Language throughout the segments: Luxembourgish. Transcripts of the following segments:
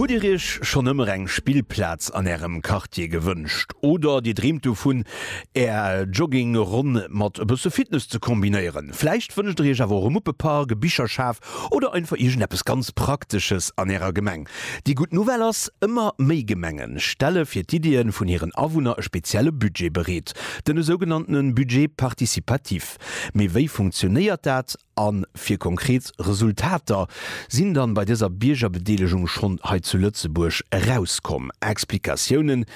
Hutt Dir Iech schonn ëmmer eng Spillplaz an Ärem Quartier gewënscht? Oder Dir dreemt dovun, Är Jogging-Ronn mat e bësse Fitness ze kombinéieren? Vläicht wënscht Der Iech awer och e Muppepark, e Bicherschaf oder einfach iergendeppes ganz Praktesches an Ärer Gemeng? Déi gutt Nouvelle ass, Ëmmer méi Gemenge stelle fir d'Iddie vun hiren Awunner e spezielle Budget bereet, den esougenannte Budget participatif. Mee wéi funktionéiert dat? A fir konkret Resultater sinn dann bei dëser Biergerbedeelegung schonn hei zu Lëtzebuerg erauskomm. Explikatiounen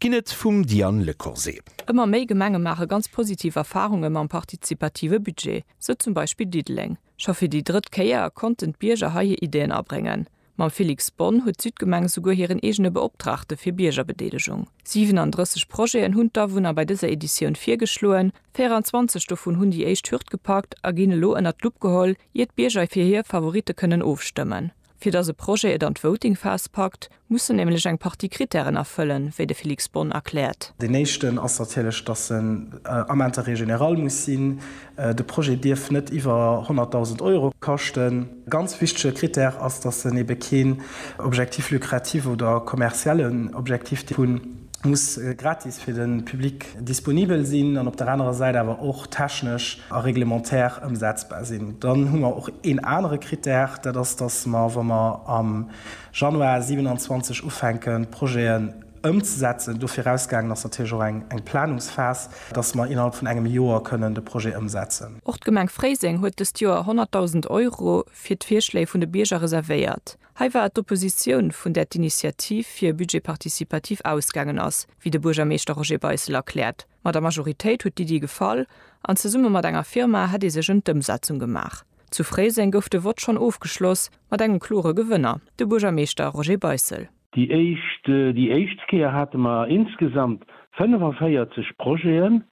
ginn et vum Diane Lecorset. Ëmmer méi Gemenge maache ganz positiv Erfarunge mam partizipative Budget, sou zum Beispill Diddeleng. Scho fir déi drëtt Kéier konnten d'Bierger hei hir Ideen abréngen. Mam Felix Bonn huet d'Südgemeng esouguer hiren eegene Beoptraagte fir Biergerbedeelegung. 37 Projeten hunn d'Awunner bei dëser Editioun virgeschloen. 24 dovun hunn déi éischt Hürd gepackt a ginn elo ënnert d'Lupp geholl, ier d'Bierger fir hir Favoritte kënnen ofstëmmen. Fir datt e Projet et an d'Voting-Phas packt, muss en nämlech eng Partie Krittären erfëllen, wéi de Felix Bonn erkläert. Deen éischten ass natierlech, datt en am Interêt général muss sinn. De Projet dierf net iwwer 100.000 Euro kaschten. Ganz wichtege Krittär ass, dass en ebe keen Objectif lucratif oder kommerziellen Objectif hunn, muss gratis fir de Public disponibel sinn an op der anerer Säit awer och technesch a reglementaire ëmsetzbar sinn. Dann hu mer och een anere Krittär, dat ass, dass mer, wa mer am Januar 27 ufänken, d'Projeten Ëmzesetzen. Do virausgaangen ass natierlech och eng Planungsphas, dass mer innerhalb vun engem Joer kënnen de Projet ëmsetzen. Och d'Gemeng Fréiseng huet dëst Joer 100.000 Euro fir d'Virschléi vun de Bierger reservéiert. Hei war et d'Oppositioun, vun där d'Initiativ fir e Budget participatif ausgaangen ass, wéi de Buergermeeschter Roger Beissel erkläert. Ma der Majoritéit huet d'Iddi gefall an zesumme mat enger Firma hätt ee sech ëm d'Ëmsetzung gemaach. Zu Fréiseng gouf de Vott schonn ofgeschloss mat engem klore Gewënner, de Buergermeeschter Roger Beissel. Déi éischt déi éischt Kéier hate mer insgesamt 45 Projeten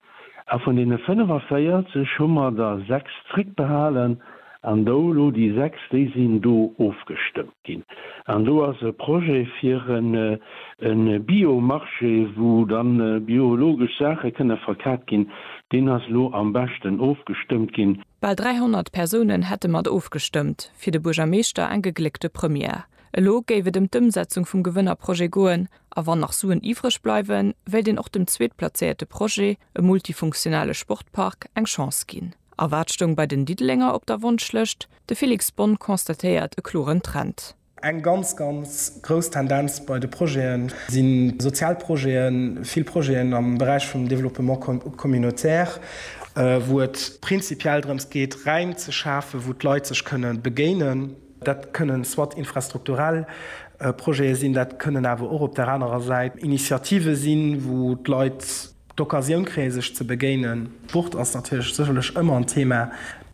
a vun deene 45 hu mer der sechs zréckbehalen an do elo déi sechs déi sinn do ofgestëmmt ginn an do ass e Projet fir en en Bio-Marché wou dann biologesch Saache kënne verkat ginn, deen ass elo am beschten ofgestëmmt ginn. Bal 300 Persounen hätte mat ofgestëmmt, fir de Buergermeeschter eng gegléckte Première. Elo géif et ëm d'Ëmsetzung vum Gewënnerprojet goen a wann nach Suen iwwreg bleiwen, wéilt een och dem zweetplazéierte Projet, e multifunktionale Sportpark, eng Chance ginn. A wat stoung bei den Diddelenger op der Wonschlëscht? De Felix Bonne constatéiert e kloren Trend. Eng ganz, ganz grouss Tendenz bei de Projete si sozial Projeten, vill Projeten am Beräich vum Développement communautaire, wou et prinzipiell drëms geet, Räim ze schafen, wou d'Leit sech kënne begéinen. Dat kënnen soit infrastrukturell Projete sinn, dat kënnen awer och op där anerer Säit Initiative sinn, wou d'Leit d'Occasioun kréie sech ze begéinen. Sport ass natierlech sécherlech ëmmer en Thema.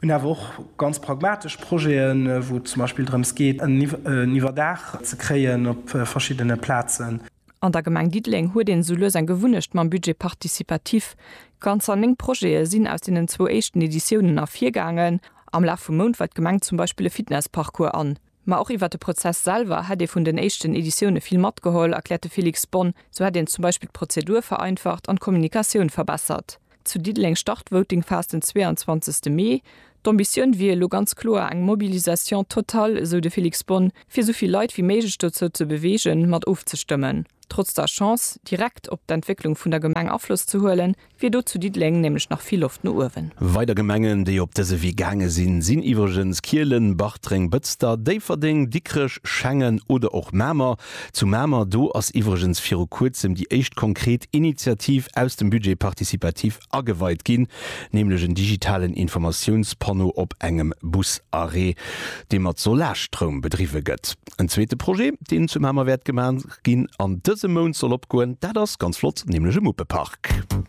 Mir hunn awer och ganz pragmatesch Projeten, wou et zum Beispill drëms geet, en Iwwerdaach ze kréien op verschiddene Plazen. An der Gemeng Diddeleng huet een esou lues eng Gewunnecht mam Budget participatif. Ganzer néng Projete sinn aus deenen zwou éischten Editiounen ervirgaangen. Am Laf vum Mount weit d'Gemeng zum Beispill e Fitnessparcours an. Ma och iwwert de Prozess selwer hätt ee vun den éischten Editioune vill matgeholl, erkläert de Félix Bonne. Sou hätt een zum Beispill d'Prozedur vereinfacht an d'Kommunikatioun verbessert. Zu Diddeleng start d'Votingphas den 22 Mee. D'Ambitioun wier elo ganz kloer eng Mobilisation totale, esou de Felix Bonn, fir esou vill Leit wéi méiglech dozou ze beweegen, mat ofzestëmmen. Trotz der Chance, direkt op d'Entwécklung vun der Gemeng Afloss ze huelen, wier do zu Diddeleng nämlech nach vill Loft no uewen. Weider Gemengen, déi op dëse Wee gaange sinn, sinn iwwregens Kielen, Bartreng, Bëtzter, Déifferdeng, Dikrech, Schengen oder och Mamer. Zu Mamer, do ass iwwregens viru kuerzem déi éischt konkret Initiativ aus dem Budget participatif ageweit ginn, nämlech en digitalen Informatiounspanno op engem Busarrêt, dee mat Solarstroum bedriwwe gëtt. En zweete Projet, deen zu Mamer wäert gemaach ginn an dësem Mount soll opgoen, dat ass, ganz flott, nämlech e Muppepark.